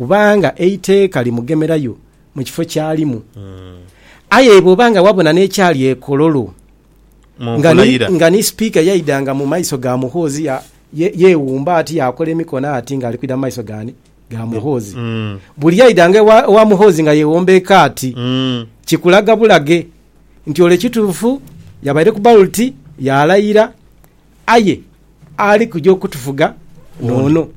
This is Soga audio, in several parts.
Kubanga eiteeka limugemerayo mu kifo ky'alimu. Aye bw'oba nga wabona n'ekyali e Kololo nga ni, nga ni Sipiika yaidanga mu maiso ga Muhoozi ya, ye, yeewumba ati yaakola emikono ati ng'ali kwidha mu maiso g'ani? Ga Muhoozi. Buli yaidanga ewa, ewa Muhoozi nga yeewombeeka ati, kikulaga bulage nti ole kituufu yabaire ku baloti yaalayira. Aye ali kuja okutufuga n'ono.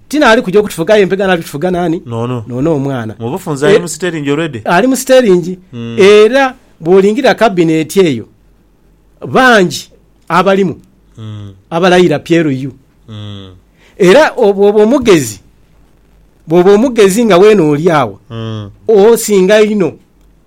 Ti n'ali kuja okutufuga aye mpegho ali kutufuga naani? N'ono. N'ono omwana. Mu bufunze ali mu siteringi already. Ali mu siteringi. Era bw'olingira kabineeti eyo, bangi abalimu abalayira PLU. Era bw'oba omugezi, bw'oba omugezi nga weena oli agho, osinga inho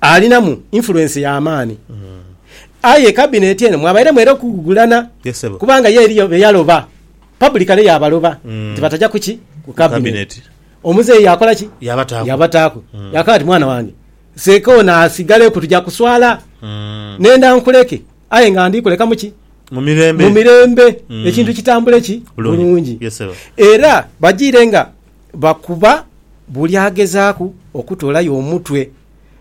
alinamu influence ya maani aye cabinet eno mwabairemu era okugugulana Yes, sebo. kubanga ye eriyo beyaloba publicly yabaloba nti bataja kuki ku cabinet Cabinet. omuzeeyi yakola ki Yabataaku. yabataaku yakaba ati mwana wange seeka ono asigaleku tuja kuswala nenda nkuleke aye nga ndikulekamu ki Mu mirembe. mu mirembe ekintu kitambule ki Bulungi. bulungi Yes, sebo. era bajiire nga bakuba buli agezaaku okutoolayo omutwe.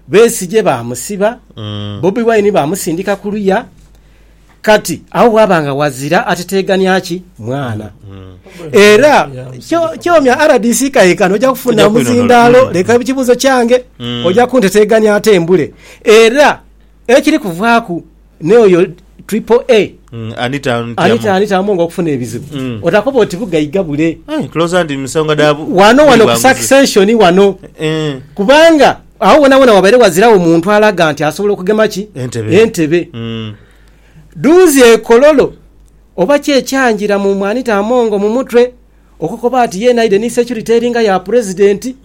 Besigye baamusiba, Bobi Wine baamusindika ku luya. Kati agho waaba nga ghazira ateteegania ki mwana. Era kyo kyomya rdc kayinkana oja kufuna Tugya kwinonoola. omuzindaalo, Mm. leka ekibuuzo kyange, oja kunteteegania ate mbule. Era ekiri kuvaaku. Naye oyo triple A Mm, Anita Anita Anita Anita Amongo okufuna ebizibu Mm. otakoba oti bugaiga bule Ai, closer ndi musonga da bu- wano wano buli ku bwanguzi. succession wano Eh, kubanga awo wona wona wabaire wazirawo muntu alaga nti asobola okugema ki Entebe. entebe mm, duuzi ekololo oba kyekyangira mu mwanita amongo mu mutwe Okukoba ati yeena aidhe ni securite eringa ya Pulezidenti,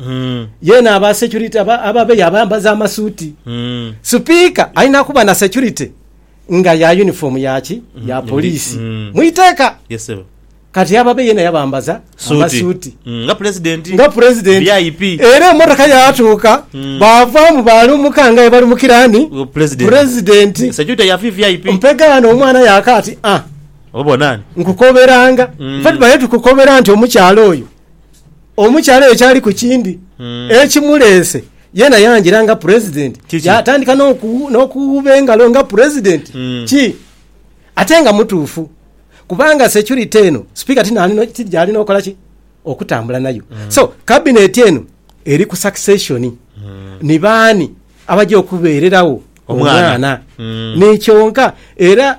yeena aba securite aba ababe yabayambaza amasuuti. Sipiika alina kuba na securite nga ya yunifoomu ya ki? Ya poliisi mu iteeka. Yes ssebo. Kati ababe yeena yabambaza Suuti. amasuuti Mm, Nga Pulezidenti. nga Pulezidenti. VIP. Era emotoka yaatuuka baavaamu baalumuka nga bwebalumukira ani? Pulezidenti. Pulezidenti. Securite ya VVIP. Mpegaano omwana yaaka ati, Ah! Obona ni? Nkukoberanga. Mm. Fe tubaire tukukobera nti omukyala oyo omukyala oyo kyali ku kindi mm. ekimuleese yena yangira nga president yatandika n'okuwuba engalo nga president mm. ki ate nga mutuufu kubanga security eno sipiika gyali nokola ki okutambula nayo mm. so kabineti eno eri ku succession mm. ni baani abajja okubeererawo omwana mm. nikyonka era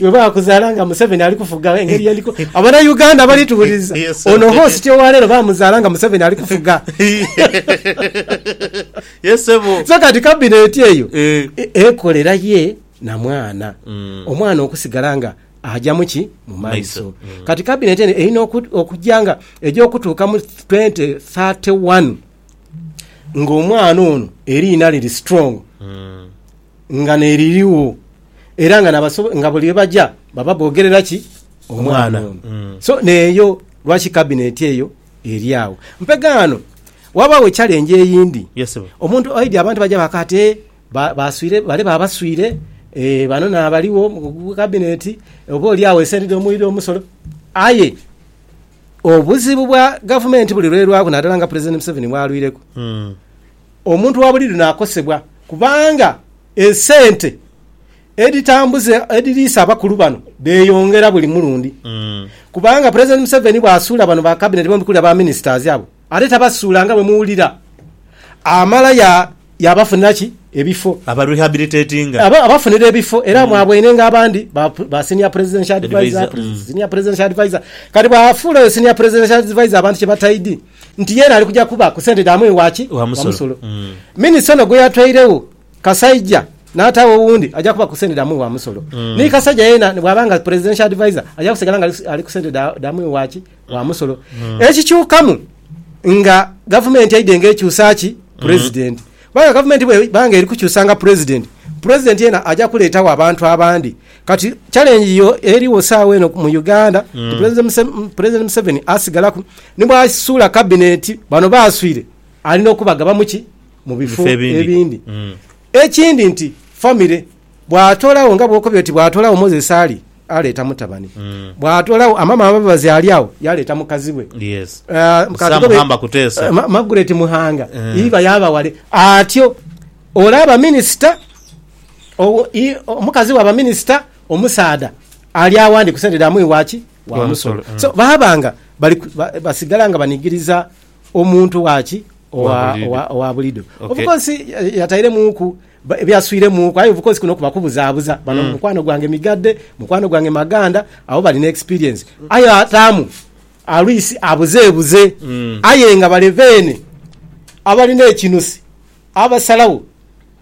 Webakuzala nga Museveni ali kufuga engeri yendi ku abana Uganda bali tuwuliza ono host owalero bamuzala nga Museveni ali kufuga so kati cabinet eyo eh. e, ekolera ye na mwana mm. omwana okusigala nga ajamu ki mu maiso mm. kati cabinet eno erina okujja nga eja okutuuka mu 2031 ng'omwana ono eriina liri strong mm. Nga n'eriligho, era nga n'abasobola, nga buli yebaja baba boogerera ki? Omwana ono. So n'eyo, lwaki kabineti eyo eri agho? Mpe ghano ghabagho echalengi eyindi. Yes, ssebo. Omuntu aidhi abantu baja baaka ati, Ee, ba- baswire, bale babaswire, ee, bano n'abaligho mu mu kabineti, oba oli agho esente dh'omuwire omusolo. Aye obuzibu bwa gavumenti buli lw'erwaku, naadala nga Pulezidenti Museveni bw'alwireku, Mm. Omuntu wa buliidho naakosebwa kubanga esente edhitambuza edhiriisa abakulu bano dheyongera buli mulundi kubanga Pulezidenti Museveni bw'asuula bano ba Kabineti bombi kule aba Minisitazi abo ate tabasuula nga bwe muwulira amala ya yaabafunira ki ebifo Aba rehabilitatinga. aba abafunira ebifo era mwabwaine nga abandi ba ba Senior Presidential Adviser, Adviser, mm. Senior Presidential Adviser kati bw'afuula oyo Senior Presidential Adviser abantu kye bataidi nti yeena ali kuja kuba ku sente dha mwii wa ki? Wa musolo. Minisita ono gwe yatweiregho Kasaija n'ataagho owundi aja kuba ku sente dha mwii wa musolo. Ni Kasaija yeena ni bw'aba nga Presidential Adviser aja kusigala nga ali ku sente dha mwii wa ki? Wa musolo. Ekikyukamu nga Gavumenti eidhe nga ekyusa ki? Pulezidenti. Kubanga Gavumenti bw'eba nga eri kukyusanga Pulezidenti, Pulezidenti yeena aja kuleetagho abantu abandi. Kati challenge yo eriwo saawa eno mu Uganda mm. President Museveni asigalaku nibwasuula cabinet bano baswire alina okubagaba muki mu bifo ebindi mm. ekindi nti family bwatolawo nga bwokobye oti bwatolawo Moses Ali aleeta mutabani mm. bwatolawo amama ababazi ali awo yaleeta mukazi we yes. uh, eh, eh, Magret Muhanga mm. iba yabawale atyo olaba minisita Omukazi wa baminisita omusaadha ali agho ndi ku sente dha mwii wa ki? Wa musolo. So baaba nga basigala nga banigiriza omuntu wa ki? Owa bulido. Of course yatairemuuku byaswiremuuku aye of course kuno kuba kubuzaabuza. Bano mm. mukwano gwange migadde, mukwano gwange maganda, abo bali ne experience. Aye ataamu alwisi abuzeebuze mm. aye nga baleveene abalina ekinusi abasalawo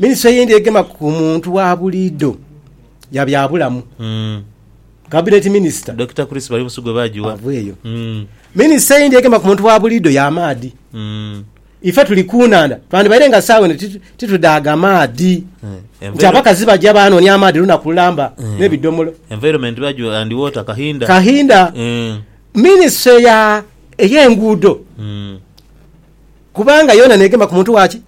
Minisitule eyindi egema ku muntu wa buliidho ya byabulamu, Kabineti Minisita Dokita Chris Barimusu gwe baagigha. ava eyo. Minisita eyindi egema ku muntu wa buliidho ya maadhi. Ife tuli ku nhandha, twandibaire nga saawa eno titu- titudaaga maadhi. Nti abakazi baja baanoonia amaadhi lunaku lulamba n'ebidhomolo. Environment baagigha and water Kahinda. Kahinda, Eh, minisitule ya ey'enguudo mm. kubanga yoona neegema ku muntu waaki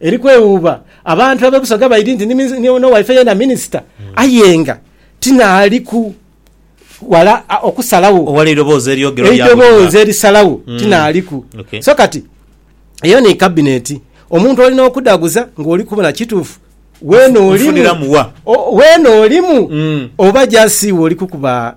Eri kwewuuba abantu ab'e Busoga baidhi nti ni n'owaife yeena minisita aye nga ti naaliku wala okusalagho. Owali eidhoboozi eryogerwa lya buli mwaka. Eidhoboozi erisalagho ti naaliku. So kati eyo ni Kabineti. Omuntu olina okudhaguza ng'oli kubona kituufu weena olimu, weena olimu oba just iwe oli kukuba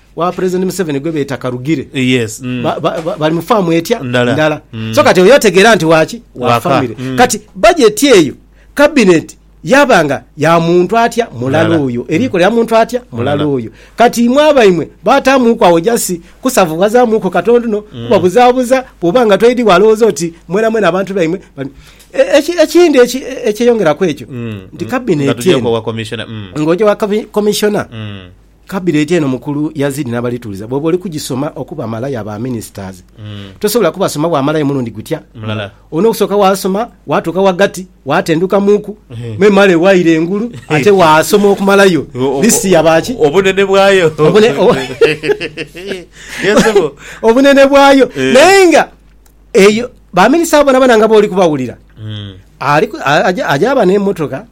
wa president museveni gwebeeta karugire yes mm. ba, ba, ba, bali mu faamu etya ndala, ndala. Mm. so kati oyo otegeera nti waki wa famire mm. kati bajeti eyo kabineti yaba nga ya muntu atya mulala oyo eriko lya muntu atya mulala oyo kati imwe abaimwe batamuuku awo jasi kusavuwazamuuku katondono mm. kubabuzabuza bwoba nga toidi walowooza oti mwena mwena abantu baimwe ekindi e, e, ekyeyongeraku ekyo mm. nti kabineti mm. ng'oja wa komishona Kabineti eno mukulu yazidi nabalituliza bwoba oli kujisoma okuba malaya ba ministers tosobola kubasoma bwamalayo mulundi gutya mulala olina okusoka wasoma watuka wagati watenduka muku memale waira engulu ate wasoma okumalayo list yabaki obunene bwayo Obune- o- Ye sebo. obunene bwayo Eh. naye nga eyo baminisita abo bonabona nga boli kubawulira Mm. aliku- a- aja- ajaba nemotoka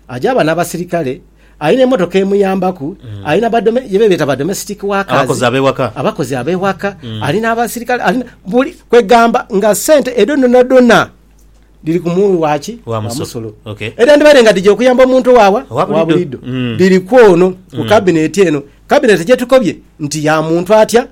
Aja aba n'abasirikale, ali n'emotoka emuyambaku, ali na badome, ye bebeeta badomestic workers. Abakozi ab'ewaka. Abakozi ab'ewaka, ali n'abasirikale, ali na buli, kwegamba nga sente edho dhonadhona dhiri ku muwi wa ki? Wa musolo. Okay. Edhandibaire nga dhija okuyamba omuntu owaawa? Owa bulido. Owa bulido. Mm. Dhiri kw'ono, ku Cabinet eno. Cabinet gyetukobye nti ya muntu atya?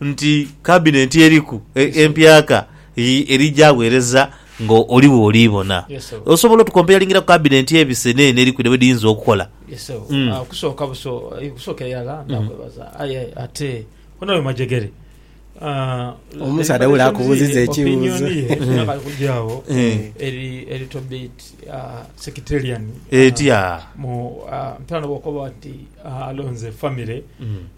nti kabinenti eriku empyaka eri gyagheereza nga oli bw'oli bona. Osobola otukompeyalingira ku kabinenti ebise n'eno eriku ne bwe dhiyinza okukola? Okusooka buso, okusookera irala ndakwebaza. Aye ate ono oyo Majegere? Omusaadha wule akubuuziza ekibuuzo. Opinioni ye esobola kale kugya agho eri a little bit sectarian. Etya? Mpita n'oba okoba oti. Alonze famire,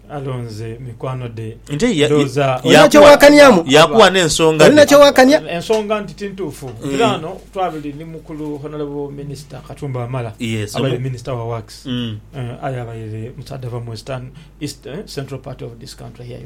alonze mikwano dhe. Nti ya- Ndowooza ya- Olina Yakuwa- kyewakaniamu? Yakuwa n'ensonga Olina dhe. kyewakania? ensonga nti tintuufu era ano twabire ni mukulu honorable minister katumba wamala Yes, abaire omu- minister wa works Mm. Eh, aye abaire musaadha ava mu western east eh, central part of this country here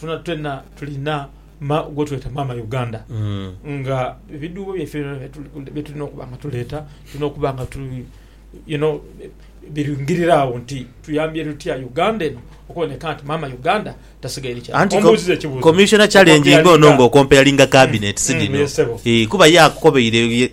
Twena twena tulina ma, gwetweta maama Uganda mm. nga ebiduubo byaife byetulina okuba nga tuleeta tulina okuba nga tu you know, biringirira awo nti tuyambye lutya uganda eno okuboneka nti maama uganda tasigaire kyaombuuziza ekibuuzo commissioner challenge nga ono nga okompeyalinga cabinet mm, sinino mm, kuba yakukobeire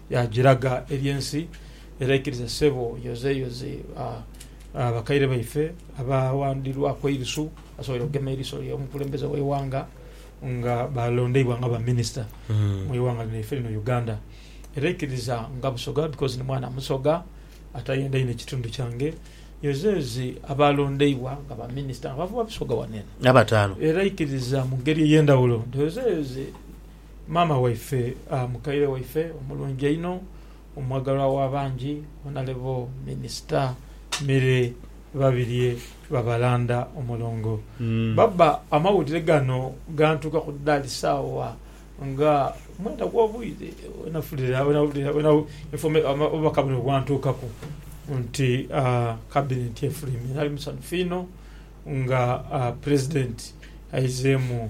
Yaagiraga eri ensi era ikiriza ssebo yozeyoze bakaire baife abaawandirwaku eirusu basobole okugema eriso ly'omukulembeze w'eighanga nga balondeibwa nga ba minisita mu ighanga lyaife lino Uganda. Era ikiriza nga Busoga because ni mwana Musoga atayendaine kitundu kyange yozeyoze abaalondeibwa nga ba minisita nga bava Busoga wano eno era ikiriza mu ngeri ey'endhawulo nti yozeyoze Maama waife, mukaire waife omulungi einho, omwagalwa w'abangi, Honalebo Minisita Milly Babirye Babalanda Omulongo. Baba, amawulire gano gantuukaku dha lisaawa nga mwenda gw'obwire obubaka buno bwantuukaku nti Kabinenti efulwimire. Nali musanhufu inho nga Pulezidenti aizeemu.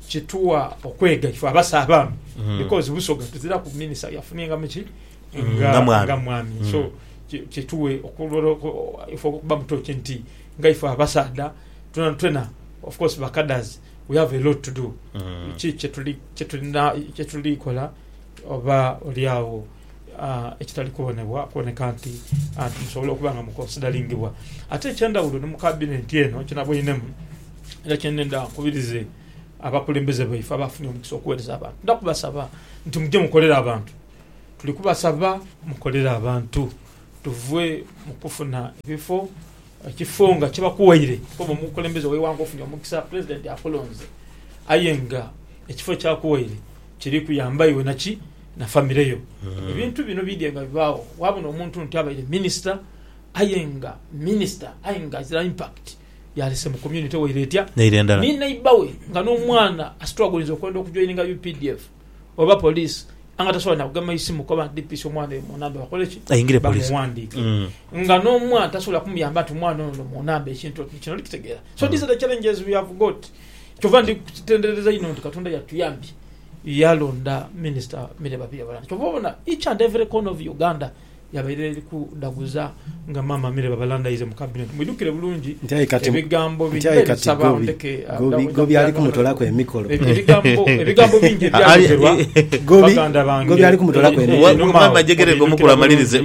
Kitugha okwega ife abasa abaami because Busoga tuziraku minister yafunye nga muki nga mwami so kitughe ife okuba mu touch nti nga ife abasaadha twena twena of course ba cadres we have a lot to do ki kyetulina kyetulikola oba olyagho. ekitali kubonebwa kuboneka nti musobola okuba nga mukonsidalingibwa. Ate eky'endhawulo ni mu Kabinenti eno kinaboinhemu era kye ndhenda nkubirize abakulembeze baife abaafunye omukisa okuweereza abantu. Ndidha kubasaba nti muje mukolere abantu. Tuli kubasaba mukolere abantu tuve mu kufuna ebifo, ekifo nga kibakuwaire kuba omukulembeze w'eighanga ofunye omukisa, Pulezidenti akulonze aye nga ekifo ky'akuwaire kiri kuyamba iwe naki? na famire yo. Ebintu bino bidhye nga bibaagho waabona omuntu nti abaire minisita aye nga minisita aye nga azira impact yaalese mu community waire etya? Naire endala. Ni neighbour we nga n'omwana astrugglinze okwenda okujoininga updf oba police aye nga tasobola na kugema isimu kukoba nti DPC omwana oyo mu namba bakole ki? Ayingire police. Bamughandiike. Nga n'omwana tasobola kumuyamba nti omwana ono mu namba ekintu oti kino. Oli kitegeera? So these are the challenges we have got. Kyova ndi kutenderereza inho nti Katonda yatuyambye. Yalonda Minisita Milly Babirye Babalani. Kyova obona each and every corner of Uganda yabaire eri kudhaguza nga Maama Milly Babalanda aize mu Cabinet. Mwidhukire bulungi ebigambo bingi. Nti aye kati Gobi ali kumutolaku emikolo. Ebigambo bingi ebyayogherwa baganda bange. Gobi ali kumutolaku emikolo. Maama jegerega omukulu amalirize.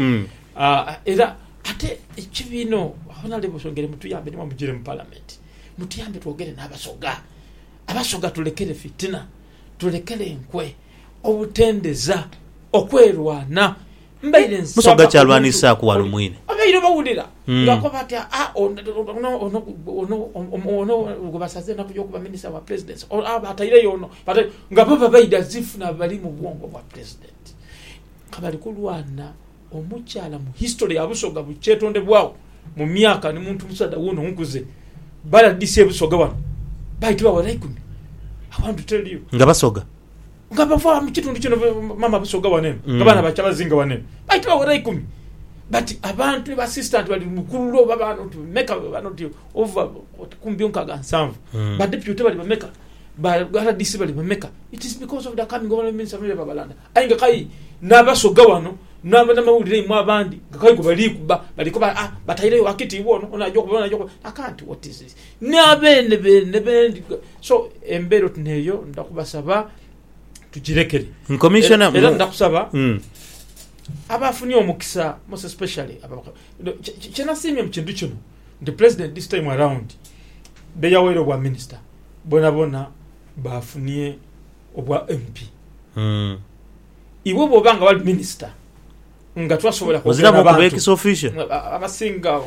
Era ate ekibiina Honourable Swongere mutuyambe nimwo mujire mu Parliament. Mutuyambe twogere n'Abasoga. Abasoga tulekere fitina, tulekere enkwe, obutendeza, okwerwana. Mbaire nsaba omuntu abaire bawulira ng'akoba ati, Aa, ono, ono, ono gwe basaze enaku y'okuba Minisita wa Pulezidenti, aa, bataireyo ono, bataireyo ono. Nga bo babaire as if nabo bali mu bwongo bwa Pulezidenti. Nga bali kulwana. Omukyala mu history ya Busoga bukyetondebwagho mu myaka ni muntu musaadha wona onkuze ba rdc e Busoga wano baitibwa wala ikumi I want to tell you. Nga Basoga? Nga bava mu kitundu kino mama Busoga wano eno nga baana ba Kyabazinga wano eno baitibwa wala ikumi but abantu ba assistant bali mukululo oba ba not meka oba not over kumi byo nkaga nsanvu ba deputy bali bameka ba rdc bali bameka it is because of the coming of Honourable Minister Milly Babalanda Aye nga kai n'Abasoga wano n'abanamawulire imwe abandi nga kai gwe bali kuba, bali kuba a, batairegho akitiibwa ono, ono aja okuba, ono aja okuba. I can't, what is this? Ni abeene beene bendi. So, embeera oti n'eyo nda kubasaba tugirekere. Commissioner, Era, era nda kusaba Mm. abaafunye omukisa most especially aba- no, kye- kye- kyenasiimye mu kintu kino nti president this time around beyaweera obwa minister bonabona baafunye obwa MP. Iwe bwoba nga wali minister nga twasobola kwogera na bantu. Oziramu ex official. Abasinga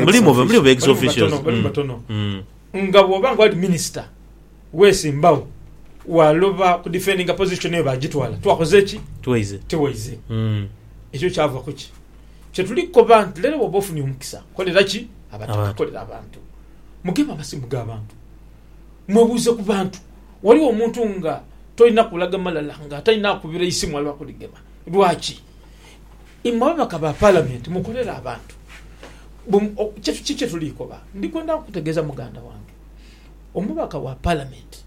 mulimu mulimu ex official. Mulimu batono. Mm. Nga bwoba nga wali minister wesimbawo waloba ku defendinga position eyo bagitwala twakoze ki? Tiwaize. Tiwaize. Mm. Ekyo kyava kuki? Kyetuli koba nti lero bwoba ofunye omukisa kolera ki? Abataka kolera abantu. Mugema amasimu ga bantu. Mwebuuze ku bantu. Ghaligho omuntu nga tolina kulaga malala nga atalina akubira eisimu ali wakuligema. Lwaki? Imwe ababaka ba Palamenti mukolera abantu. Kiki kyetuli koba? Ndi kwenda kukutegeeza muganda wange. Omubaka wa Palamenti,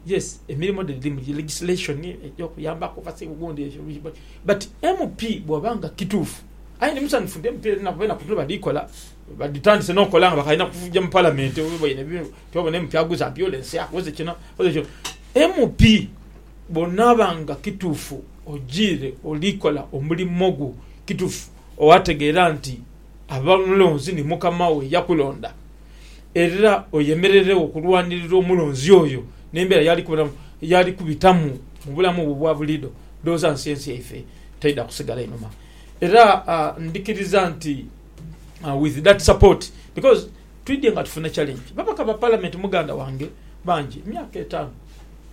yes, emirimo dhe dhirimu dhiri legislation, eby'okuyambaku abasibe obundi ebyo bigho, but MP bw'oba nga kituufu, aye ndi musanhufu nti MP dhino abainaku dhino bali kola, badhitandise n'okola nga bakaali na kuja mu Palamenti. Tobona MP aguza ambulance, akoze kino, akoze kino. MP bw'onaaba nga kituufu ojiire oli kola omulimo gwo kituufu, owategeera nti ab'omulonzi ni Mukama wo eyakulonda, era oyemereregho okulwanirira omulonzi oyo n'embeera y'ali kubitamu, y'ali kubitamu mu bulamu bwe obwa buliidho, ndhowooza nsi ensi yaife taidha kusigala inhuma. Era ndhikiriza nti with that support because. Twidhye nga tufuna challenge. Babaka ba Parliament muganda wange bangi emyaka etaanu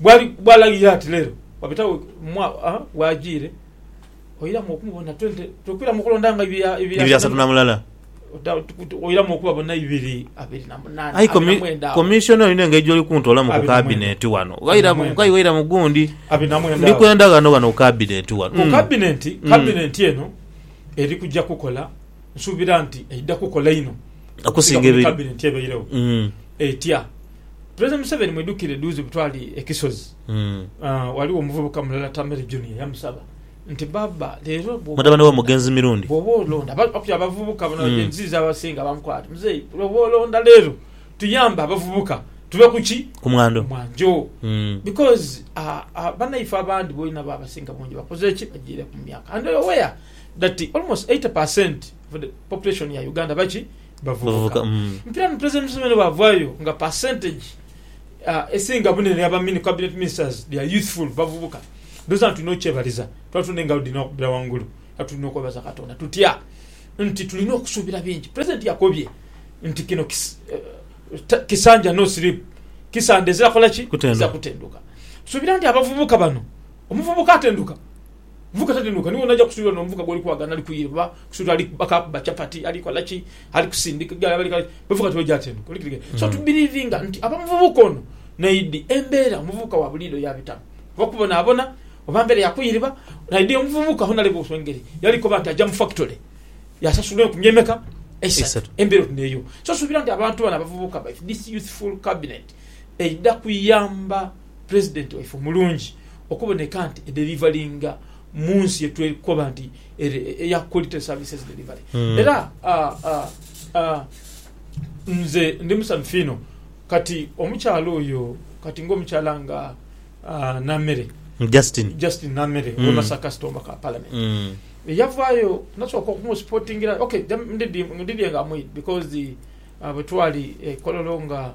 bwali bwalagira ati lero wabitawo mwa a wajiire oiramu okumubona 20 twekwiramu okulonda nga ibiri a- ibiri Ibiri asatu na mulala. Ota- tu- oiramu okubabona ibiri abiri na munana Aye abiri na komi- mwenda awo. commissioner olina engeri gyoli kuntolamu ku Abiri na mwenda. cabinet wano. Abiri na Ghaira mwenda. gai ghaira mu gundi. abiri na mwenda Ndi awo. kwenda ghano ghano ku cabinet wano. ku Mm. kabinenti Mm. kabinenti eno eri kujja kukola nsuubira nti eidha kukola inho okusinga ku mikaabire nti ebairegho etya. Pulezidenti Museveni mwidhukire dhuuzi bwetwali e Kisozi ghaligho omuvubuka mulala Tamere Junior yamusaba nti baaba leero bwooba olonda okuli abavubuka bano Gen Z z'abasinga bamukoba bati muzei bwooba olonda leero tuyambe abavubuka tuve ku ki? ku mwanjo because banaife abandi boona bo abasinga bungi bakoze ki? bajiireku mu myaka and you're aware Dati almost eighty percent of the population ya Uganda baki? Bavubuka. Mpira ni President Museveni bwavayo nga percentage ah, esinga bunene yaba mini cabinet ministers they are youthful, bavubuka. Ndowoza nga tulina okyebaliza, tuba tulina engalo dhirina okubira wangulu era tulina okwebaza Katonda tutya nti tulina okusubira bingi. President yakobye nti kino kis ta kisanja no sleep, kisande ezira kola ki? Ezira kutenduka. Tusubira nti abavubuka bano, omuvubuka atenduka. Muvuka tatenuuka niwo naja kusuubira no muvuka gwoli kuwagana ali kuyiira oba kusuubira ali akaakuba chapati ali kola ki ali kusindika egaali ali kola ki muvuka tiwali gyatenuuka oli kitegeera so to believinga nti aba muvubuka ono naidi embeera omuvubuka wa buliido yabitamu oba kubonaabona oba mbeera ya kuyiriba naidi omuvubuka hona leba otyo engeri yali koba nti aja mu factory yasasula enkumi emeka eisatu embeera oti neeyo so suubira nti abantu bano abavubuka baife this youthful cabinet eidha kuyamba Pulezidenti waife omulungi okuboneka nti ederivalinga mu nsi ye twekoba nti eri eya Quality Services Delivery. Era nze ndi musanhufu inho kati omukyala oyo kati ng'omukyala nga Namere, Justine Justine Namere ow'e Masaka City, Omubaka wa Palamenti eyavaayo nasooka okumusipotingira, ok, ndidhie nga mwidhi because bwe twali e Kololo nga.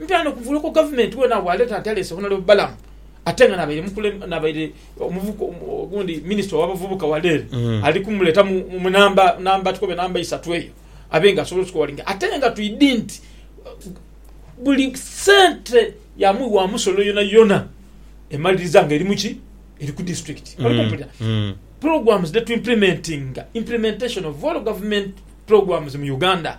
Ntaana okuvula okwo gavumenti weena w'aleeta ataleese Honorable Balaam ate nga n'abaire n'abaire omuvuka ogundi minisita ow'abavubuka wala ere ali kumuleeta mu namba namba tukobe namba isatu eyo abe nga asobola otukowalinga ate nga twidi nti buli sente ya mwi wa musolo yonayona emaliriza nga eri mu ki eri ku disitulikiti oli kumpulira programs dhe tu implementinga implementation of all government programs mu Uganda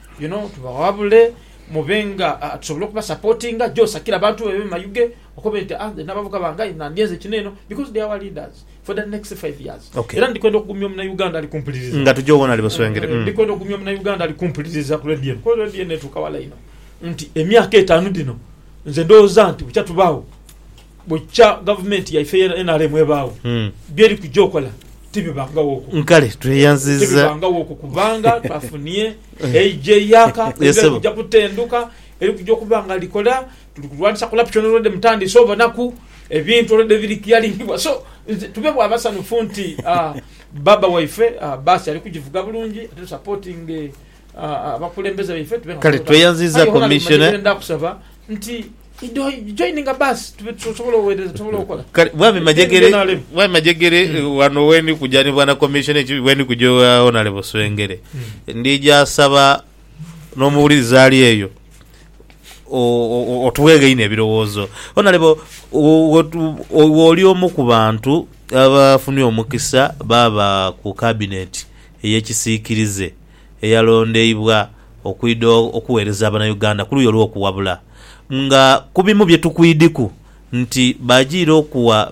You know, tubawabule mube nga tusobola okuba supportinga jo sakira abantu bebe mayuge okobe nti ah nabavuka bange aye nandyenze kino eno because they are our leaders for the next five years okay. era ndikwenda okugumya omuna Uganda ali kumpuliriza nga tujo wona ali buswengere eh, mm. ndikwenda okugumya omuna Uganda ali kumpuliriza ku radio eno kuba radio eno etuuka wala ino nti emyaka etanu dino nze ndowooza nti bukya tubawo Bukya gavumenti yaife eya nrm ebaagho, byeri kuja okola tibibangawoku. Kale tweyanziza. Tibibangawoku kubanga twafunie eija eyaka eidhira kuja kutenduka eri kuja okuba nga likola. Tuli kulwanisa corruption already mutandise obonaku ebintu already biri clearingibwa so nze tube bwa basanhufu nti Baba waife bus ali kujivuga bulungi ate tu supportinge abakulembeze baife tube nga Kale tweyanziza commissioner. Aye wona bimanyire byendakusaba nti. joininga basi tube tusobola owereza tusobola okola kale bwami majegere NRM. bwami majegere eh, wano weni kuja ni bwana commissioner eki weni kuja ewa honorable swengere ndija asaba n'omuwuliriza ali eyo o- o- o- otuwe againe ebirowoozo honorable wo- wo- wo- wooli omu ku bantu abafunye omukisa baaba ku cabinet ey'ekisiikirize eyalondeibwa okwidha okuwereza Banauganda kuluyi olwokuwabula nga kubimu byetukwidiku nti bajiire okuwa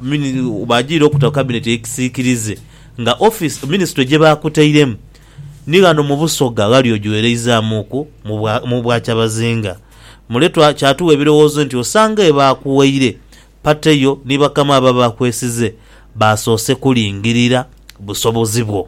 bajiire okuta cabinet eyekisikirize nga office ministry gyebakutairemu ni ghano mu Busoga ghali ogiwereizamuku mu bwa Kyabazinga mule kyatuwa ebirowoozo nti osanga ebakuwaire party yo ni bakama abo abakwesize basoose kulingirira busobozi bwo.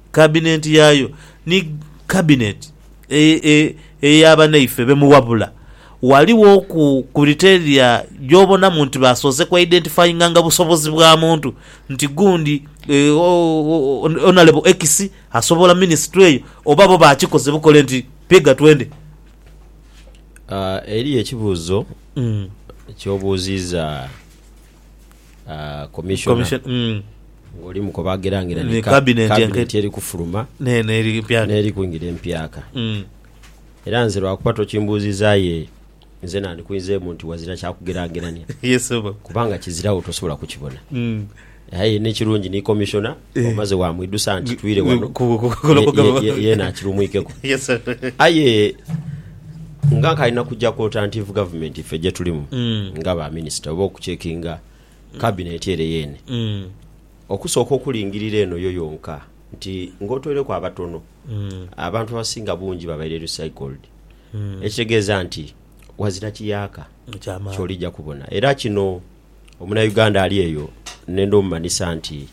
Kabinenti yaayo ni Kabineti eya banaife be muwabula. Ghaligho ku kuriteria gy'obonamu nti baasoose ku identifyinganga busobozi bwa muntu nti gundi Honourable X asobola minisitule eyo oba bo baakikoze bukole nti piga twende. Eriyo ekibuuzo ky'obuuziiza. ah, commissioner Commission- mm, ng'oli mu kubagerangira Ni ni ka- cabinet cabinet enke- eri kufuluma neno eri mpya n'eri kwingira empyaka. Mm, Era nze lwakuba tokimbuuzizaayo eyo, nze nandikuinzeemu nti wazira kya kugeraagerania yes oba kubanga kizirawo tosobola kukibona. Mm, Aye n'ekirungi ni commissioner omaze wamwidusa nti twire wano yena akirumwikeku aye nga nkalina kujja ku alternative government ffe gyetulimu mm. nga ba minister oba okucekinga cabinet ere yene mm. okusooka okulingirira eno yo yonka nti ng'otwereku abatono mm. abantu abasinga bungi babaire recycled ekitegeeza nti wazira kiyaaka kyolijja kubona era kino Omunauganda ali eyo ne ndhomumanhisa nti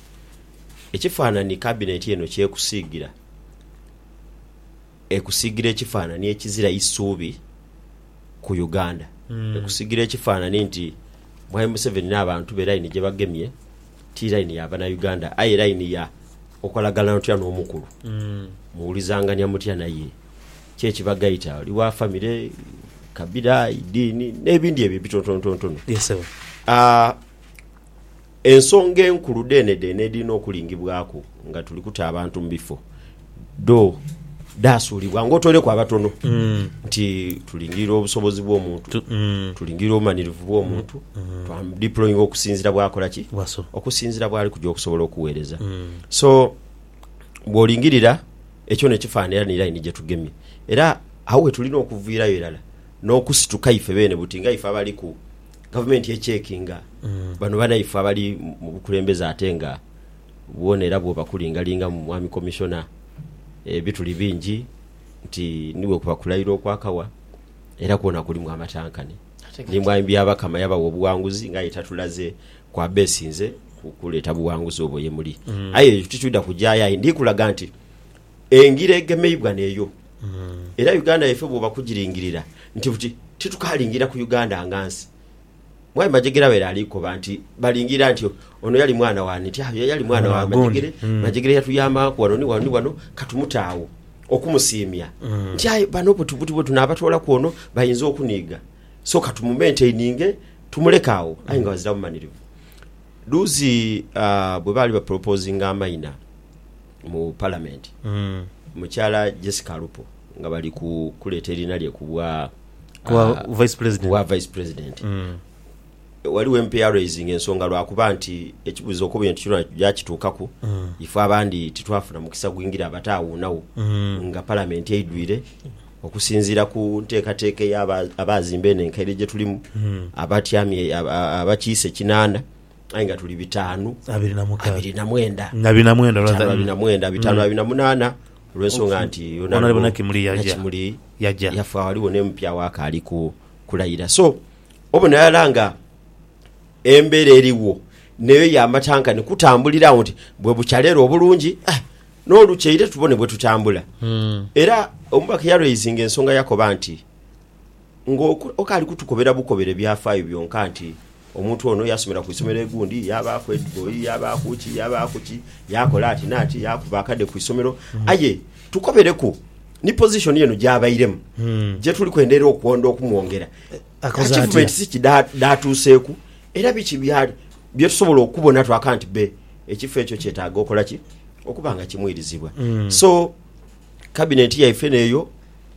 ekifaananhi kabineti eno ky'ekusiigira, ekusiigira ekifaananhi ekizira isuubi ku Uganda. Ekusiigira ekifaananhi nti Mwami Museveni n'abantu be line gye bagemye ti line ya Banauganda aye line ya okolaganira otya n'omukulu, muwulizangania mutya naye. Ki ekibagaita? Oli wa famire, kabira, idiini, n'ebindi ebyo ebitontonotontono. Yes sebo. Aa, ensonga enkulu dhenedhene edhirina okulingibwaku nga tuli kuta abantu mu bifo, dho dhaasuulibwa ng'otoireku abatono nti tulingirira obusobozi bw'omuntu, tulingirira obumanirivu bw'omuntu, twamudiployinga okusinziira bw'akola ki? Bw'asobola. Okusinziira bw'ali kuja okusobola okuweereza. So, bw'olingirira ekyo n'ekifaanana era ni laini gye tugemye. Era agho we tulina okuviirayo irala n'okusituka ife beene buti nga ife abaliku gavumenti ecekinga mm. bano banaife abali mu bukulembeze ate nga bwona era bwo bakulingalinga mu mwami komishona ebituli eh, bingi nti niwe kubakulaira okwakawa era kwona kulimu amatankane. Ndimbwa Byabakama yabawa obuwanguzi ngaye tatulaze kwabesinze kuleeta buwanguzi obwo yemuli mm. aye ekyo tikyuda kujayo aye ndikulaga nti engira egemeibwa neyo mm. era uganda yefe bwoba kugiringirira nti buti titukalingira ku uganda nga nsi mwai majegera wera alikoba nti balingira nti ono yali mwana wani nti ayo ah, yali mwana wa majegere mm. majegere yatuyambanku wano ni wano ni wano katumutaawo Okumusiimya nti, Aye bano buti bwe tunaabatoolaku ono bainza okuniiga, so ka tumumenteininge tumuleke agho. Aye nga bazira bumanirivu. Dhuuzi ah, bwe baali bapolopozinga amaina mu Palamenti, mukyala Jessica Alupo nga bali ku kuleeta eriina lye ku bwa Ku bwa ah, Vice President. ku bwa Vice President, Ghaligho empeer araisinga ensonga lwa kuba nti ekibuzo okuba entu kyona yakitukaku ife abandi titwafuna mukisa gwingira abate agho nagho nga palamenti eidwire okusinzira ku ntekateka eya abazimba eno enkaire gyetulimu abatyamye abakiise ekinana aye nga tuli bitanu abiri na mukaaga abiri na mwenda abiri na mwenda bitano abiri na mwenda bitano abiri na munana olwensonga nti Honorable Nakimuli yaja. Nakimuli Yaja. yafa ghaligho ne mupya we akali ku kulayira so Obona irala nga embera erigho neyo ya matanka ni kutambulira agho nti bwe bukya leero obulungi eh, n'olukyeire tubone bwe tutambula. Era omubaka yalweizinga ensonga yakoba nti ng'okaali kutukobera bukobere byafaayo byonka nti omuntu ono yasomera ku isomero egundi, yaabaaku ediboi, yaabaaku ki, yaabaaku ki, yaakola ati n'ati, yaakuba akade ku isomero. Aye tukobereku ni pozishoni eno gy'abairemu gye tuli kwenderera okwonda okumwongera. Achievements ki dhaatuuseeku era biki bye tusobola okubona twaka nti be ekifo ekyo kyetaaga okola ki okuba nga kimwirizibwa. Hmm. So kabineti yaife neeyo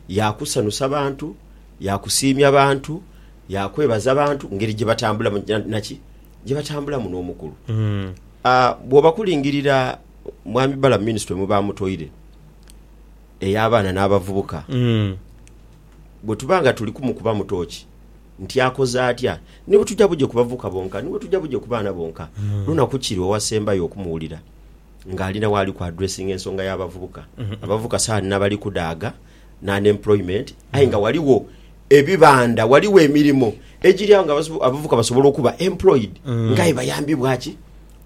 yaakusanusa bantu, yaakusiimya bantu, yaakwebaza bantu ngeri gye batambulamu naki gye batambulamu n'omukulu. Hmm. Ah, bw'oba kulingirira Mwami Balamu minisitule mwe baamutoire ey'abaana n'abavubuka, hmm. bwe tuba nga tuli kumukubamu tooki nti akoze atya, ni bwe tujja buje ku bavubuka bonka, ni bwe tujja buje ku baana bonka, hmm. lunaku ki lwe wasembayo okumuwulira ng'alina waali ku addressinga ensonga y'abavubuka? Hmm. Abavubuka saani n'abali kudaaga n'unemployment, aye nga waliwo ebibanda waliwo emirimu egiri awo nga abavubuka basobola okuba employed mm. ngaye bayambibwa ki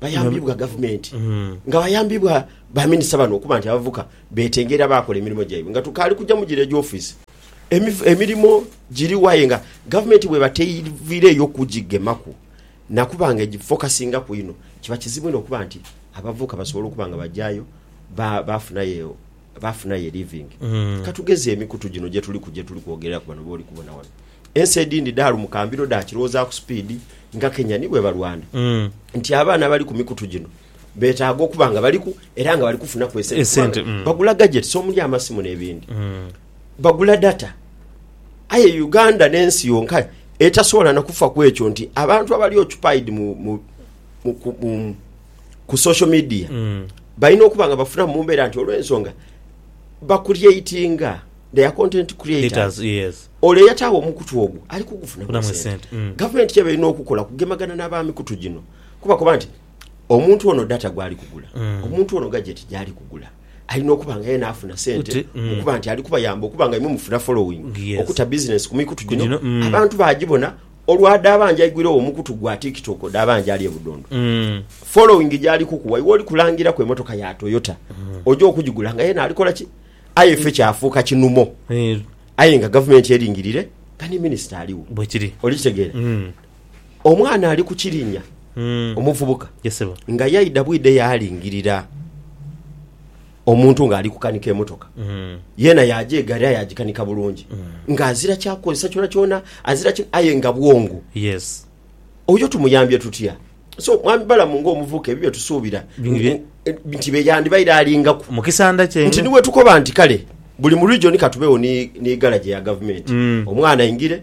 bayambibwa mm. gavumenti mm. nga bayambibwa baminisita bano okuba nti abavubuka Beetenga era baakola emirimo gyaibwe nga tukaali kuja mu giro egy'ofiisi. Emirimo giriwo aye nga gavumenti bw'eba teiviireeyo kugigemaku na kuba nga egifokasingaku inho, kiba kizibu inho okuba nti abavubuka basobola okuba nga bagyayo baafunayo baafunayo livingi. Ka tugeze emikutu gino gye tuliku gye tuli kwogereraku bano b'oli kubona wano. Ensi edhindi dhaalumuka mbiro dhaakirowoozaku sipiidi nga Kenya ni bwe balwana nti abaana abali ku mikutu gino betaaga okuba nga baliku era nga bali kufunaku esente, esente mm. bagula gadgets omuli amasimu n'ebindi mm. bagula data aye uganda n'ensi yonka etasobola nakufa ku ekyo nti abantu abali occupied mu, mu, mu, ku, mu, ku social media mm. balina okuba nga bafuna mu mbeera nti olw'ensonga bakuryeitinga their content creators yes. olwo eyataawo omukutu ogwo ali kugufunamu sente mm. gavumenti kyeba erina okukola kugemagana n'abamikutu gino kubakoba nti omuntu ono data gwali kugula mm. omuntu ono gajeti gyali kugula alina okuba nga yena afuna sente mm. okuba nti ali kubayamba okuba nga imwe mufuna following yes. okuta bizinesi ku mikutu gino mm. abantu bagibona olwada abanja igwire wo mukutu gwa tiktok oda abanja ali ebudondo mm. following gyali kukuwa iwe oli kulangira ku emotoka ya toyota mm. oja okugigula nga yena alikola ki aye fe kyafuuka kinumo mm. aye nga gavumenti eringirire kani minisita aliwo bwekiri oli kitegeera mm. Omwana ali ku kirinya omuvubuka nga yaidha bwidha yaalingirira omuntu ng'ali kukanika emotoka. Yeena yaaja egaari aye agikanika bulungi ng'azira kyakukozesa kyonakyona, azira ki aye nga bwongo. Oyo tumuyambye tutya? So Mwami Balamu ng'omuvubuka ebyo bye tusuubira nti be yandibaire alingaku. Nti ni bwetukoba nti kale buli mu region ka tubeegho ni garaje ya gavumenti omwana aingire,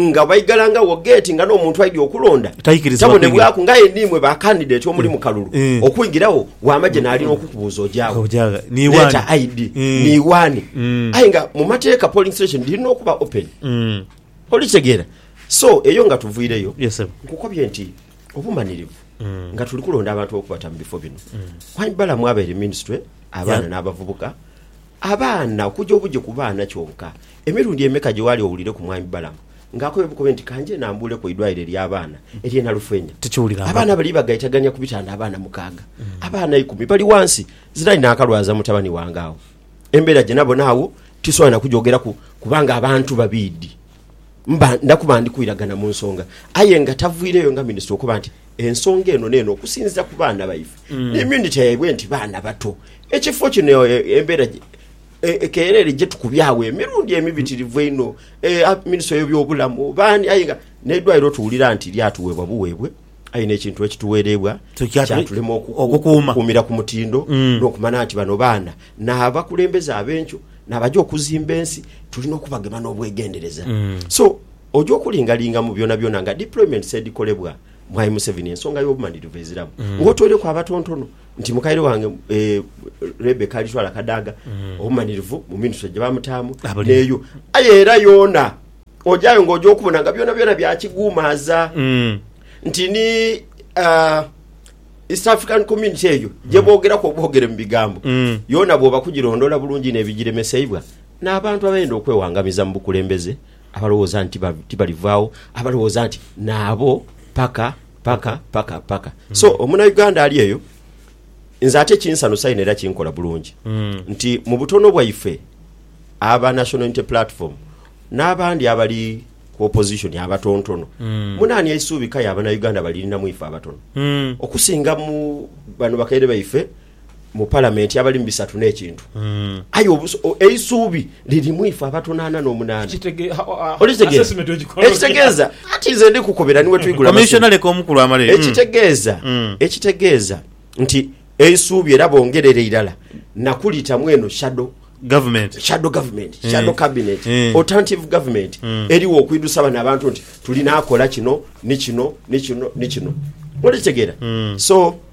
nga baigalangagho geeti nga n'omuntu aidhi okulonda Taikirizibwa kuingira. tabonebwaku nga aye niimwe ba kandideti omuli mu kalulu Mm. okwingiragho wamagye naali n'okukubuuza ojaagho Ojaagha. Ni wani? leeta ID Mm. niiwaani Mm. aye nga mu mateeka polling station dhirina okuba open Mm. olikitegeera so eyo nga tuviireyo Yes, sebo. nkukobye nti obumanirivu Mm. nga tuli kulonda abantu bokubata mu bifo bino Hon Balaam abaire minisitule abaana Ya. n'abavubuka abaana okuja obugi ku baana kyonka Emirundi emeka gye waali owulireku Mwami Balaam ng'akobe bukobe nti ka nje nambuule ku idwaliro ery'abaana ery'e Nalufeenya? Abaana Tikiwulirangaku. bali bagaitagania ku bitanda abaana mukaaga, abaana ikumi bali ghansi. Zirali naakalwaza mutabani wange agho. Embeera gye nabona agho tisobola na kugyogeraku kubanga abantu babiidhi. Mba nda kuba ndi kwiragana mu nsonga. Aye nga tavwireyo nga minisita okoba nti ensonga eno n'eno okusinziira ku baana baife n'emyunite yaibwe nti baana bato, ekifo kino embeera gye. E, ekeera ere gye tukubyawo emirundi emibitirivu einho e, minisitule y'ebyobulamu baani aye nga n'eidwaliro tuwulira nti lyatuweebwa buweebwe aye n'ekintu ekituweereibwa kyatulema okukuumira ku mutindo mm. n'okumana nti bano baana n'abakulembeze ab'enkyo n'abaja okuzimba ensi tulina okubagema n'obwegendereza mm. so oja okulingalinga mu byona byona nga deployments edikolebwa mwai Museveni ensonga y'obumanirivu eziramu mm. ng'otoireku abatontono nti mukaire wange eh, Rebeka alitwala akadaaga obumanirivu mu minitwe gye bamutaamu neyo aye era yoona ojayo nga oja okubona nga byona byona byakiguumaaza Mm. nti ni ah, East African Community eyo gye boogeraku obwogere mu bigambo Mm. yoona bwoba kugirondoola bulungi inho ebigiremeseibwa n'abantu abeyenda okwewangamiza mu bukulembeze abalowooza nti tibalivaagho, abalowooza nti naabo paka paka paka paka. Mm. So omunauganda ali eyo nze ate kinsanusa ino era kinkola bulungi mm. nti mu butono bwaife aba National Unity Platform n'abandi abali ku opposition abatontono mm. munaani eisuubi kaya abanauganda balirina mu ife abatono mm. okusinga mu bano bakaire baife mu palamenti abali mu bisatu n'ekintu aye eisuubi liri mu ife abatono ana n'omunaana olitegeeza ekitegeeza ati nze ndi kukubira niwe twigula ekitegeeza hmm. hmm. ekitegeeza nti eisuubi era bongerere irala nakulitamu eno shadow government shadow government hmm. shadow cabinet alternative government eriwo okwidusa bano abantu nti tulina akola kino ni kino ni kino ni kino olitegeera so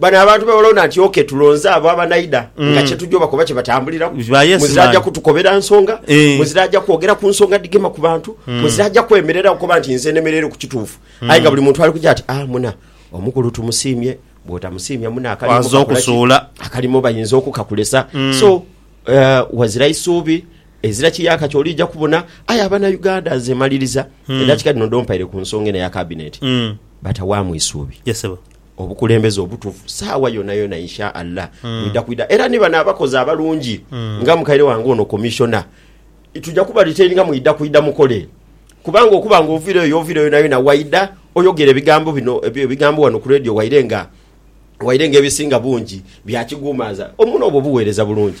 Bano abantu be balonda nti ok tulonze abo abanaidha mm. nga kyetuja obakoba kyebatambuliramu muzira aja kutukobera nsonga eh. muzira aja kwogera ku nsonga dhigema ku bantu mm. muzira aja kwemerera okuba nti nze nemerere ku kituufu mm. aye nga buli muntu ali kuja ati ah muna omukulu tumusiimye bwotamusiimya muna akalimu bayinza okukakulesa mm. so uh, eh, wazira isuubi ezira kiyaka kyolija kubona aye abana uganda nze maliriza mm. edakika dino dompaire ku nsonga eno ya kabineeti mm. batawamu isuubi yes, Obukulembeze obutufu saawa yonayona insha Allah mm. bwidha kwidha era ni bano abakozi abalungi mm. nga mukaire wange ono commissioner tuja kuba retaininga mwidha kwidha mukole kubanga okuba nga ovira eyo ovira yonayona waidha oyogera ebigambo bino ebigambo wano ku radio waire nga waire nga ebisinga bungi byakigumaza omuno obwo obuweereza bulungi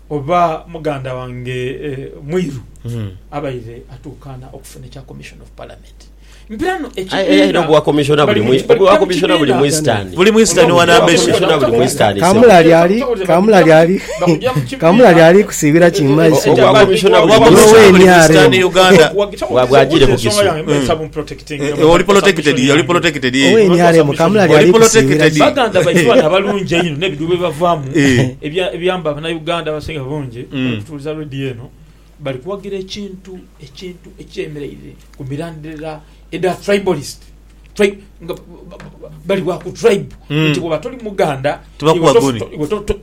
Oba muganda wange Mwiru abaire atuukaana okufuna ekya Commission of Parliament. Mpira no ekibiina Kamulali ali kusiibira ki mu maiso? Eh, eh, oli protected, oli protected, eh. Owe NRM kamula lyali Oli protected. kusiibira ki? baganda baitu bano abalungi einho n'ebidhu bye bavaamu Eh. ebya- ebiyamba abanauganda abasinga bungi Mm. bali kutuuliza radio eno bali kuwagira ekintu ekintu ekyemereire ku mirandira edha tribalist Tri- nga ba- ba- ba- bali wa ku tribe Mm. nti bwoba toli muganda Tibakuwa iwe tof- guni. to- iwe to- to-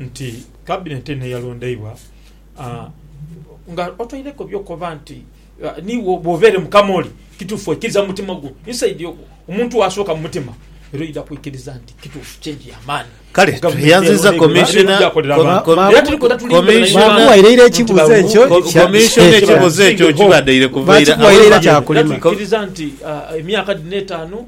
nti Cabinet eno eyalondeibwa nga otoireku byokoba nti niiwe bwova ere mukama oli kituufu oikiriza mumutima gwo inside ogwo omuntu wasooka mumutima era oidha kwikiriza nti kituufu change ya maani Kale tweyanziza commissioner era tuli kwena tulinga ekibuzo ekyo okibadaire kuvaira awo. Tuikiriza nti emyaka dhino etaanu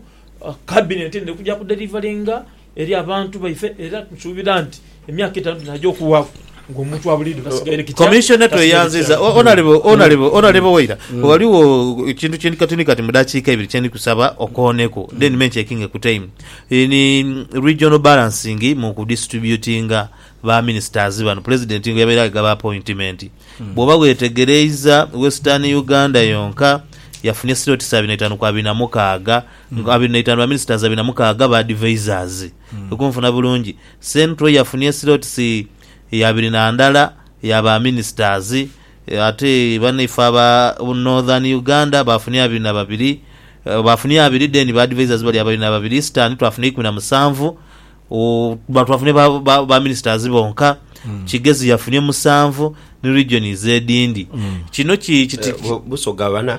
Cabinet eno erikuja kudelivaringa eri abantu baife era nsuubira nti emyaka etaanu dhinaja okuwaaku ng'omuntu wa buliidho tasigaire kitya. Commissioner tweyanziza O- Honourable- Honourable- Honourable Waira ghaligho ekintu kyendi kati ni kati mu dakiika ibiri kyendi kusaba okooneku then me ncheckinge ku time Eh, ni regional balancing mu ku distributinga ba ministers bano president nga yabaire agaba appointment bwoba wetegereiza western uganda yonka yafunye slot sa abiri na itaanu ku abiri na mukaaga Nga abiri naitanu baminisitazi abiri namukaaga ba advisers. Kwe kunfuna bulungi. Central yafunie slots ya abiri nandala ya ba ministers ate banaife aba northern Uganda bafunie abiri na babiri bafunie abiri then ba advisers bali abiri na babiri eastern twafuna eikumi na musanvu ooh twafunie ba ba ministers bonka kigezi yafunie musanvu ni regions edindi kino ki kiti Busoga bana.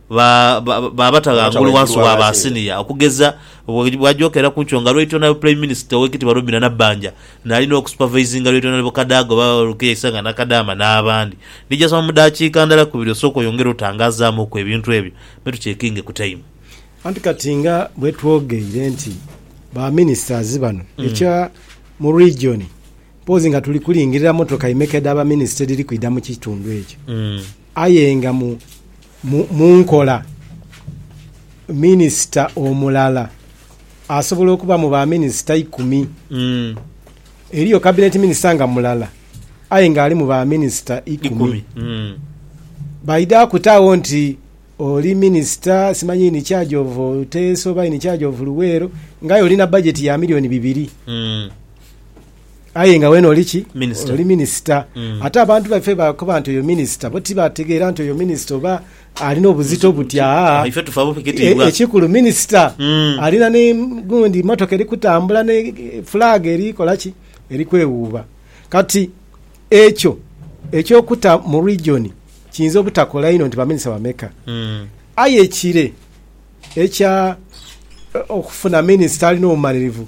Ba, ba, ba bata ghangulu wansi wa ba siniya, okugeza, bwe, bwajokeera ku nkyo nga Lweito Naibu Prime Minister Owekitibwa Robina Nabbanja naali n'okusupervisinga Lweito Naibu Kadaga oba Rukia Isanga Nakadaama n'abandi. Ndija soma mu daakiika ndala ku biri osooke oyongere otangazaamuku ebintu ebyo me tucekinge ku time. Anti kati nga bwe twogeire nti ba Ministers bano ekya mu region, mpoozi nga tuli kulingirira motoka imeka edha ba Minister edhiri kwidha mu kitundu ekyo, Aye nga mu nkola, minisita omulala asobola okuba mu ba minisita ikumi. Eriyo kabineti minisita nga mulala aye nga ali mu ba minisita ikumi. Baidhaku taagho nti oli minisita simanyi in charge of Teso oba in charge of Luweero nga aye olina bajeti ya milioni bibiri. Aye nga wena oli ki? Minister. Oli minister. Ate abantu baife bwebakoba nti oyo minister, bo tibategeera nti oyo minister oba alina obuzito buti. Aa, Awo ife tufa bubi e, kitiibwa. ekikulu minister alina ni, gundi motoka eri kutambula ni flag eri kola ki? Eri kwewuuba. Kati ekyo eky'okuta mu region kiyinza obutakola inho nti baminister bameka. Aye ekire ekya okufuna minister alina obumalirivu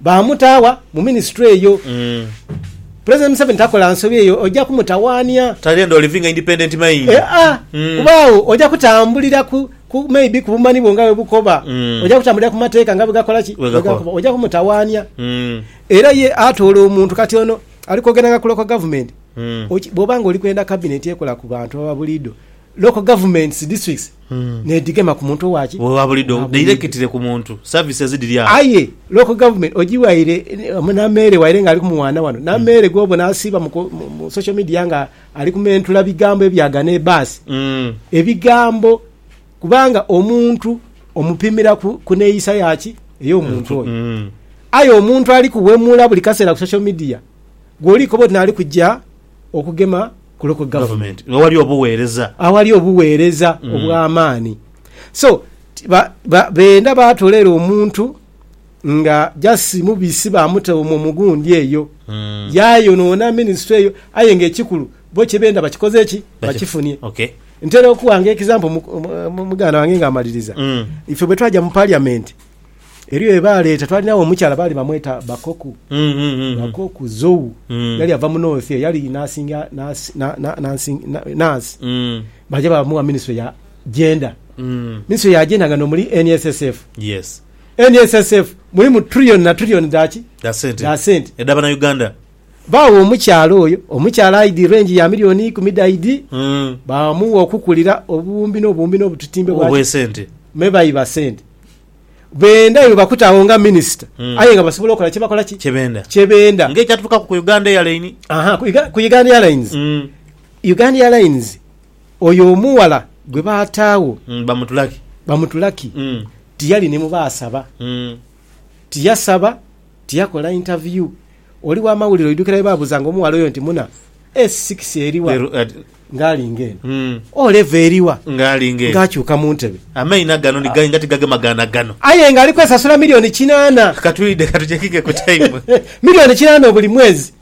Baamuta wa mu minisitule eyo? Pulezidenti Museveni takola nsobi eyo, oja kumutawaania. Tali and oliving a independent mind. Eea, kuba agho oja kutambulira ku, ku, maybe ku bumanhi bwo nga bwe bukoba. Oja kutambulira ku mateeka nga bwe gakola ki? Bwe gakoba. Oja kumutawaania. Era ye atoola omuntu, kati ono ali kwogeranga ku local government. Oki, bw'oba nga oli kwenda kabineti ekola ku bantu ababuliidho, Local governments, districts, nedhigema ku muntu owa ki? Owa bulido, directly ku muntu. Services dhiri agho. Aye local government ojiwaire na meere waire nga ali ku mwana wano. Na meere gwobona asiiba mu ku, mu, mu social media nga ali kumentula bigambo ebyagana ebaasi. Mm. Ebigambo, kubanga omuntu omupimira ku, ku neeyisa ya ki? Ey'omuntu oyo. Mm. Aye omuntu ali kuwemula buli kaseera ku social media, gwoli koba oti naali kuja okugema. ku local government awali obuweereza awali obuweereza obw'amaani so ba ba beenda baatolera omuntu nga just mubisi baamuta omwo mu gundi eyo yaayonoona ministry eyo aye nga ekikulu bo kye beenda bakikoze ki bakifunie okay Ntera okuwa nga example mu- mu- mu- muganda wange ng'amaliriza ife bwe twaja mu parliament Eriyo ye baaleeta, twalinagho omukyala baali bamweta Bakoku. Mm, mm, mm. Bakoku Zou Mm. yali ava mu north eyo, yali nasinga nasi- na- na- nansing- na- nasi Mm, baja bamuwa minisitule ya gender mm. minisitule ya gender nga nomuli nssf Yes. nssf mulimu trillion na trillion dhaki Dha sente. Dha sente. Edha bana Uganda. Baagha omukyala oyo omukyala aidhi rengi ya milioni ikumi dhaidhi, baamugha okukulira obuwumbi n'obuwumbi n'obutitimbe bwa obw'esente. Me baiba sente. Benda iwe bakute agho nga minisita aye nga basobola okola kye bakola ki? Kye benda. Kye benda. Nga ekyatuukaku ku Uganda Airline. Aha, ku Uga- ku Uganda Airlines. Mm. Uganda Airlines, oyo omughala gwe baataagho Mm, bamutulaki. bamutulaki, Mm. tiyali ni mu baasaba. Mm. Tiyasaba Tiyakola interview. Oli wa mawulire oidhukira bwe baabuzanga omughala oyo nti muna e sikisi eri wa? Leero at- Ng'alinga eno. Mm. O leva eri wa? Ng'alinga eno. Ng'akyuka mu ntebe. Amaina gano ni gainga tigagema gaana gano. Aye ng'ali kwesasula milioni kinaana. Katwidhe ka tucekinge ku time. Milioni kinaana obuli mwezi.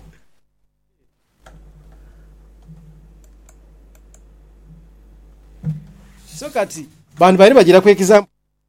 So kati, bantu baidhi bagira ku example.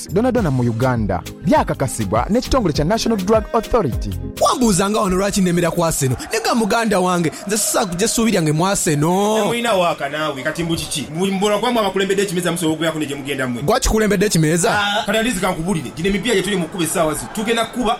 Drugs dhonadhona mu Uganda, byakakasibwa n'ekitongole kya National Drug Authority. Wambuuza nga wano lwaki nemera ku Arsenal ni ga muganda wange nze sisobola kuja essuubi lyange mu Arsenal. Temulina waaka naawe kati mbu kiki? Mbu buli muboolwa kwaamwe abakulembedde ekimeeza musobola okubeeraku ne gye mugenda mwe? Gwe akikulembedde ekimeeza? Kati at least kankubulire, gino emipiira gyetuli mu kukuba essaawa zino tugenda kukuba.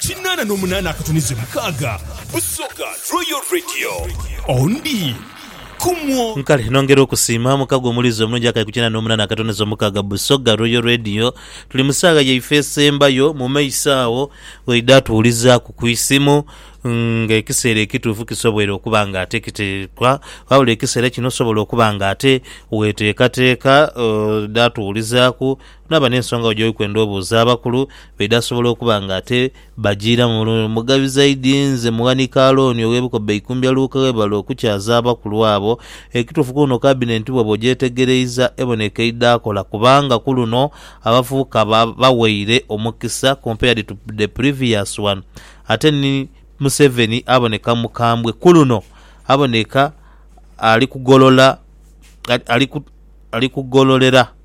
Kinaana n'omunaana akatunize mukaaga, Busoga Royal Radio ondi kumwo. Kale nongera okusiima mukago omulizi omulungi akaye ku kinaana n'omunaana akatunize omukaaga, Busoga Royal Radio. Tuli mu saagha yaife esembayo, mu maiso agho oidha atuwulizaaku ku isimu ng'ekiseera ekituufu kisoboire okuba ng'ate kiteekwa. Wabula ekiseera kino osobola okuba ng'ate weteekateeka oidha tuwulizaaku. Naba n'ensonga wo gy'oli kwenda obuuza abakulu baidha asobola okuba nga ate bajiiramu bulungi. Mugabi zaidi nze mughanika Alooni ow'ebikoba eikumbya Luke webale okukyaza abakulu abo. Ekituufu ku luno kabinenti bwoba ogyetegereiza eboneka eidhaakola kubanga ku luno abavubuka ba baweire omukisa compared to the previous one ate ni Museveni aboneka mukambwe ku luno aboneka ali kugolola ali kugololera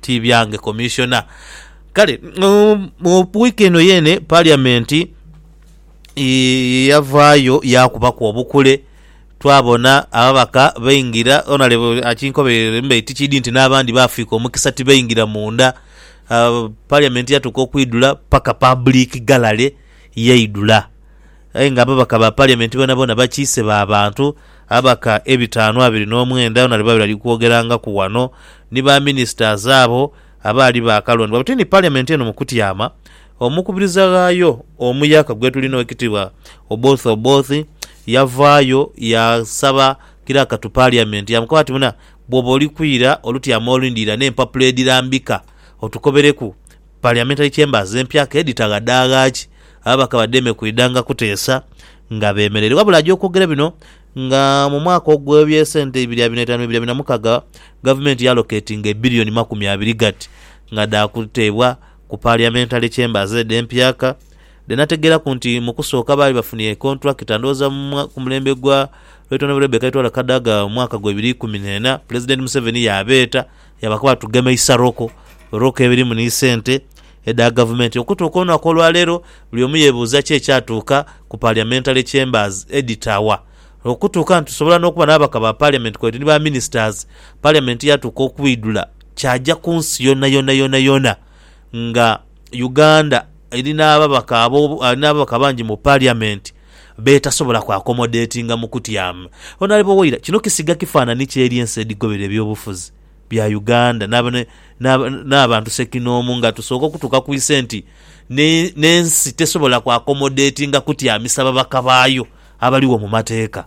ti byange Commissioner. Kale mu week eno yeene parliament eh, yavaayo yaakubaku obukule twabona ababaka baingira, Honourable akinkobereire mbe tikidi nti n'abandi baafiika omukisa tibaingira munda. Ah, parliament yatuuka okwidhula paka public gallery yaidhula. Aye nga ababaka ba Parliament boonaboona bakiise ba bantu, ababaka ebitaanu abiri n'omwenda na liba bali kwogerangaku ghano ni ba ministers abo abaali baakalondebwa but ni Parliament eno mu kutyama omukubiriza ghaayo omuyaka gwetulina Owekitiibwa Oboth Oboth yavaayo yasaba kiraka to Parliament yamukoba ati muna bwoba oli kwira olutyama olindira n'empapula edhirambika otukobereku Parliamentary Chambers empya ke dhitaghadaagha ki, ababaka badheeme kwidhanga kuteesa nga beemereire. Wabula aja okwogera bino nga mu mwaka ogw'ebyesente ibiri abiri n'etaanu bibiri abiri na mukaga gavumenti yaaloketinga ebilioni makumi abiri ghati nga dha kuteebwa ku Parliamentary Chambers edho empya ka dhenategeeraku nti mu kusooka baali bafunye kontulakita ndhowooza ku mulembe gwa Rt Hon Rebecca Itwala Kadaga mu mwaka gwa ibiri ikumi n'ena Pulezidenti Museveni yaabeeta Yabakoba tugema isaroko roko ebirimu ni sente edha gavumenti. Okutuuka olunaku olwaleero buli omu yebuuza ki ekyatuuka ku Parliamentary Chambers edhitawa. Okutuuka nti tusobola n'okuba n'ababaka ba Parliament kweidhi ni ba ministers, Parliament yatuuka okwidhula kyaja ku nsi yonayona yonayona nga Uganda eri n'ababaka abangi mu Parliament. b'etasobola ku akomodetinga mu kutyama. Ono ali bowoira kino kisiga kifanani ki eri ensi edhigoberera eby'obufuzi bya Uganda n'abantu sekinoomu nga tusooka okutuuka ku ise nti n'ensi tesobola ku akomodetinga kutyamisa babaka baayo abaligho mu mateeka.